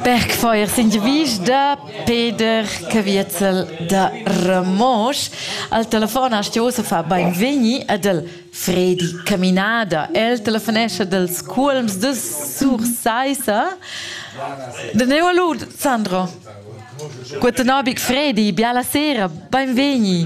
Bergfeuer s'ingiavisch da Peder Caviezel da Ramosch. Al telefon ha Stiosa fa beinvegni ad el Fredi Caminada. El telefonescha dels cuolms de Sursaissa. De neu a lud, Sandro. Guten Abend, Fredi. Biala sera. Beinvegni.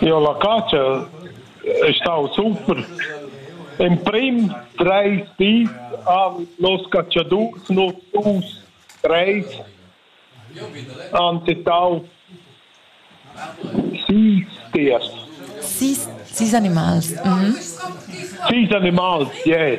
Jo, la catscha ei stau super. Emprim treis dis han los catschadurs nus dus treis antitau sis tiers. Sis, sis animals. Mhm. Sis animals, ie. Yeah.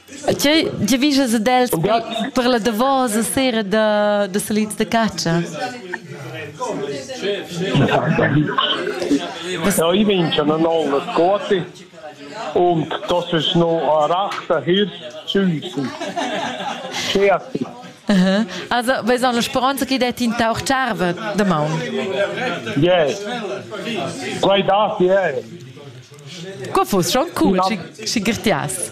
Tgei giavischas ad els per la davosa sera da, da salits da catscha? Ja, ich bin schon an allen Kote und das ist noch ein rechter Hirsch Süßen. Scherzi. Aha. Also, vais la speranza che det in tauch tscharve da maun. Yeah. Quai dat, yeah. Co fuss schon cool, si girtias?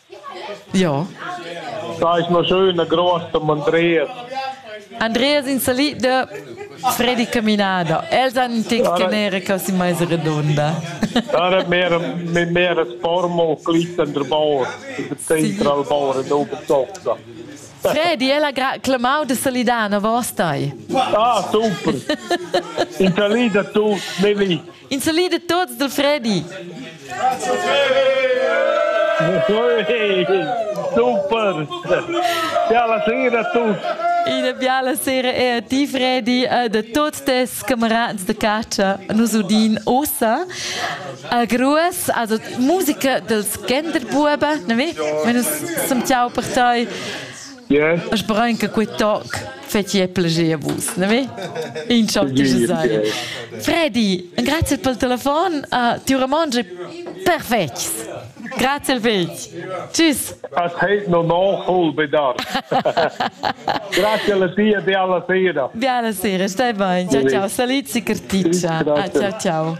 Ja. Stai ma schön a grossa Andreas. Andreas in salì da Freddy Caminada. Els han tin canere che si mais redonda. Da è mehr mehr das Formo clissen der Bauer. Das Zentral Bauer in Obertofta. Freddy, ella gra clamau de Salidano, vos stai? Ah, super! In Salida tu, ne vi. In salid a tuts dal Freddy. Super! Biala sera a tutti! Una biala sera è a ti Freddy e da tutti tes camerats de caccia nos udin ossa a gruas, also musica dels Genderbuben, ne mi? Wenn uns zum Ciao per toi. Yeah. A sperain che quei toc fetschia plascher a vus, ne ve? In ciao che je sei. Freddy, grazie per il telefono. Uh, ti romangi perfetto. Grazie već. Tschüss. As heit no no hol bedar. Grazie alla tia e alla sera. Di alla sera, stai bene. Ciao ciao, saliti carticcia. Ah, ciao ciao.